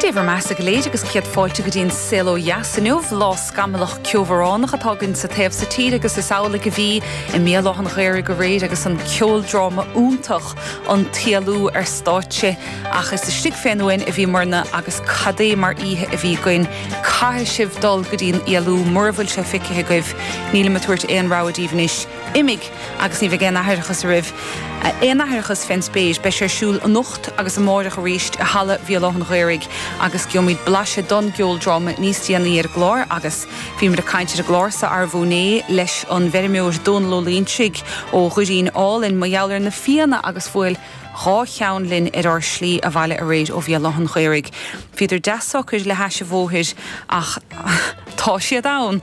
Dé bhur mbeatha go léir agus céad fáilte go dtí an Saol Ó Dheas inniu, lá scamallach ceobhránach atá againn sa taobh so tíre agus is amhlaidh a bhí i mBéal Átha an Ghaorthaidh aréir agus an ceoldráma iontach An tÉalú ar stáitse. Ach is istigh fén ndíon a bhíomarna agus cad é mar oíche a bhí againn. Caithfidh sibh dul go dtí an Éalú mura bhfuil sé feicthe agaibh. Nílim ag tabhairt aon rogha daoibh anois. imigh agus ní bheidh aon aithreachas oraibh, aon aithreachas fén spéir, beidh sé ar siúl anocht agus amáireach arís i Halla Bhéal Átha an Ghaorthaidh agus gheobhaimid blaiseadh don gceoldráma níos déanaí ar an gclár agus bhíomar ag caint ar an gclár so arú inné leis an bhfeirmeoir Dónal Ó Loingsigh ó Dhoirín Álainn mar gheall ar na fianna agus bhuail dhá cheann linn ar ár slí abhaile aréir ó Bhéal Átha an Ghaorthaidh. Bhíodar deas socair le hais a bhóthair ach tá siad ann!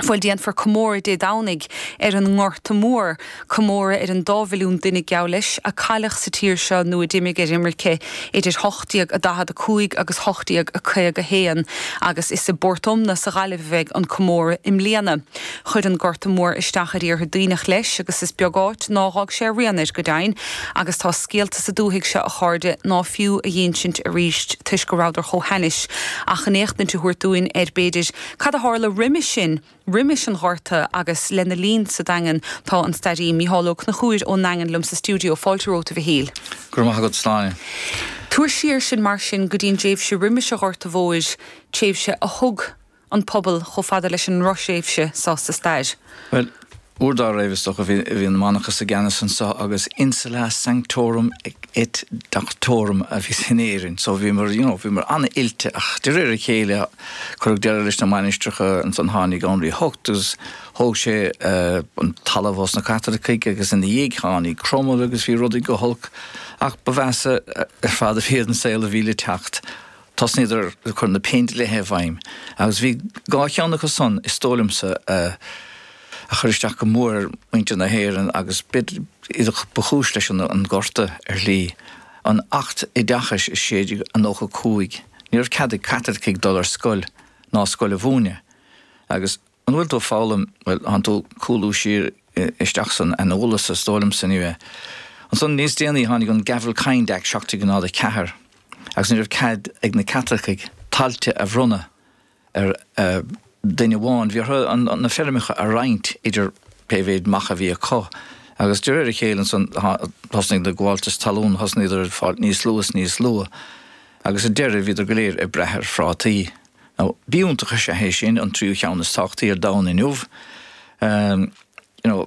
Bhuel, déanfar comóradh Dé Domhnaigh ar an nGorta Mór, comóradh ar an dá mhilliún duine, geall leis, a cailleadh sa tír seo nó a d'imigh ar imirce idir 1845 agus 1851. Agus is i bPort Omna sa Ghaillimh a bheidh an comóradh i mbliana. Chuir an Gorta Mór isteach ar Iarthar Duibhneach leis agus is beag áit nár dh'fhág sé a rian air, go deimhin, agus tá scéalta sa dúthaigh seo, a chairde, ná fiú a dh'insint arís toisc go rabhadar chomh hainnis, ach chun éachtaint a thabhairt dúinn ar, b'fhéidir, Cad a tharla roimis sin, roimis an Ghorta agus lena linn sa Daingean? Tá an stairí Micheál Ó Conchúir ón nDaingean liom sa stiúideo. Fáilte romhat, a Mhichíl. Go raibh maith agat, Sláine. Tabhair siar sinn mar sin go dtí an dtréimhse roimis an Ghorta Mhóir, tréimhse a thug an pobal chomh fada leis an ndroch-thréimhse so sa stair. Bhuel, Uair dá raibh, is dócha, bhí an manachas i gceannas anso agus an insula sanctorum et doctorum a bhí in Éirinn. So bhíomar, you know, bhíomar an-oilte ach de réir a chéile cuireadh deireadh leis na mainistreacha ansan tháinig Anraí a hOcht agus thóg sé an talamh ós na Caitlicigh agus ina dhiaidh tháinig Cromail agus bhí rudaí go holc ach ba mheasa ar fad a bheadh an saol a bhí le teacht. Thosnaíodar ag cur na péindlíthe i bhfeidhm agus bhí dhá cheann acu san, is dóigh liomsa, a chuir isteach go mór ar mhuintir na hÉireann agus b'fhéidir ba chúis leis an nGorta ar shlí, an Acht Oideachais i 1695. Ní raibh cead ag Caitlicigh dul ar scoil ná scoil a mhúineadh agus. Mura bhfuil tú ag foghlaim, Bhuel, thán tú ag cúlú siar isteach san aineolas, is dóigh liomsa, you know? Ansan níos déanaí tháinig an Gavelkind Act 1704 agus ní raibh cead ag na Caitlicigh tailte a bhronnadh ar duine amháin, bhí orthu na feirmeacha a roinnt idir pé mhéid mac a bhí acu. Agus de réir a chéile ansan thosnaigh na gabháltais talún, thosnaíodar ag fáil níos lú is níos lú agus sa deireadh bhíodar go léir ag brath ar phrátaí. Now, b'iontach an bia é sin, an tríú cheann is tábhachtaí ar domhan inniu. You know.